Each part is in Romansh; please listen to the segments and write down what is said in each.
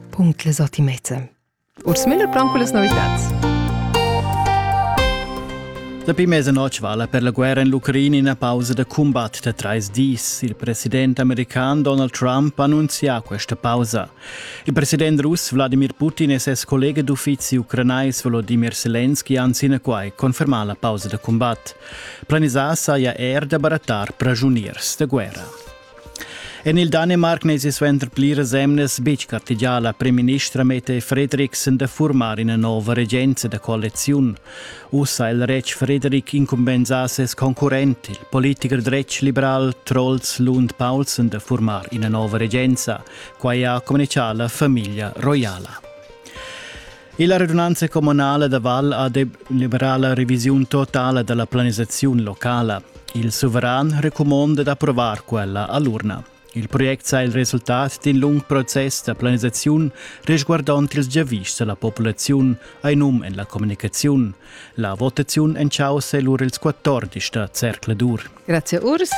Punct le sortimete. Urs Müller plan con las novitats. Dapi mese notg vala per la guerra in l'Ucraina una pausa da combat da trais dis. Il president american Donald Trump annunzia questa pausa. Il president russ Vladimir Putin e ses collega d'uffizi ucranais Volodymyr Zelensky han sine quai confermà la pausa da combat. Planisà saja er da barattar prigioniers da guerra. En il Danemarc n'èsi suenter pliras emnas betg gartegià la primministra Mette Frederiksen da furmar ina nova regenza da coaliziun. Uss ha il retg Frederik incumbensà ses concurrent, il politicher dretg liberal Troels Lund Paulsen, da furmar ina nova regenza. Quai ha communitgà la famiglia roiala. Illa radunanza communala da Val ha deliberà la revisiun totala da la planisaziun locala. Il suveran recumonda d'approvar quella a l'urna. Il project sa il resultat d'in lung process da planisaziun resguardond ils giavischs da la populaziun ai num en la communicaziun. La votaziun en chaussa è lur ils 14 da Zercladur. Grazie Urs.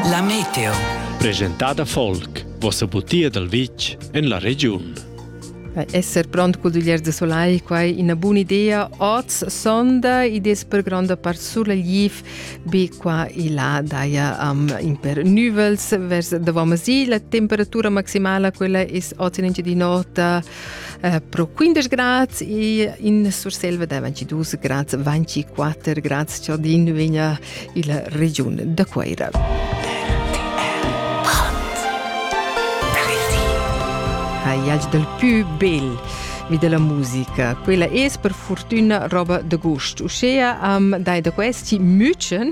La meteo. Presentada Folk, vossa butia dal vitg en la regiun. Esser pront col duglier de soleil, quai ina buna idea. Oz sonda ideas per gronda part sur la liv, be qua e là daia um, in per nuvels vers davant masil. La temperatura maximala quella es oz in di nota Uh, pro 15 grads e in Surselva da 22 grads, 24 grads cialdin vegna illa regiun da Cueira. Haiac del più bel vi della musica. Quella es per fortuna roba de gust. Uschea am dai da questi mütschen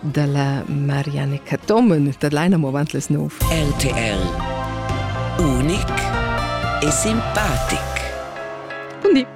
da la Marianne Cattomen da Leina movant les nov. RTL Unic e simpatic. Bundi.